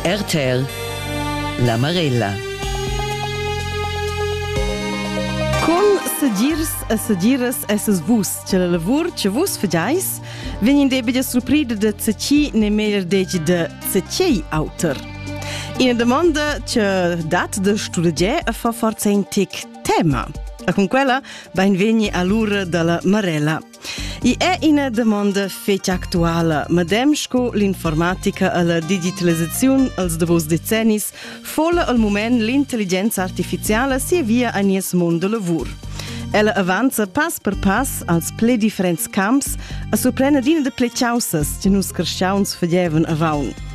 RTL La Marella Con segirs e segiras esses vus, che la lavur che vus fagais vegn in debida surprida da tsechi ne meglier degi da tsechiei auter. Ina domanda che dat da studegiare e fa forza in tic tema. E con quella benvegni all'ura dalla Marella I è ina domanda fetg actuala. Madem sco l'informatica e la digitalisaziun als davos decennis fola al moment l'intelligenza artificiala si via a nies mond da lavur. Ella avanza pass per pass als ple differents camps a surprendere adina de ple chausas che nus cresciauns fagevan avant.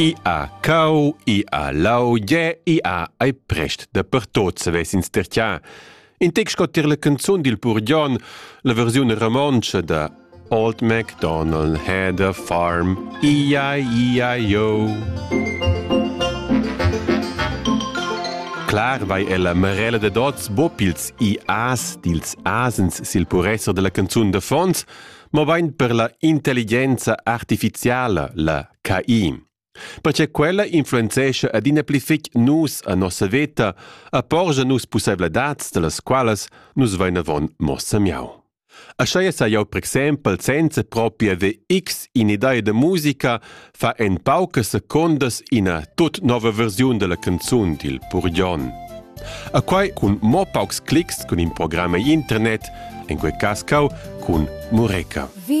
I ha cau, i ha lau, gie, i ha ei prest dapertot savess ins ter tian. In tec sco tier la canzun dil pur Jon, la versiun romontscha da Old MacDonald had a farm, ia, ia, yo. Clar vai ella marella de dots bo pils ias dils asens sil puresser della canzun de fons, mobain per la intelligenza artificiala, la KI. Perche quella influenzescha adina pli fitg nus a nossa veta, a porgia nus pussaivladads, dalas qualas nus vain avon mossa miau. Aschia sai jau per exempel senza propria haver x in idea da musica fa en paucas secundas ina tut nova versiun della canzun dil Purgion. A quai cun mo paucs clics cun in programma internet, en quei cas cau cun Mureca. Vi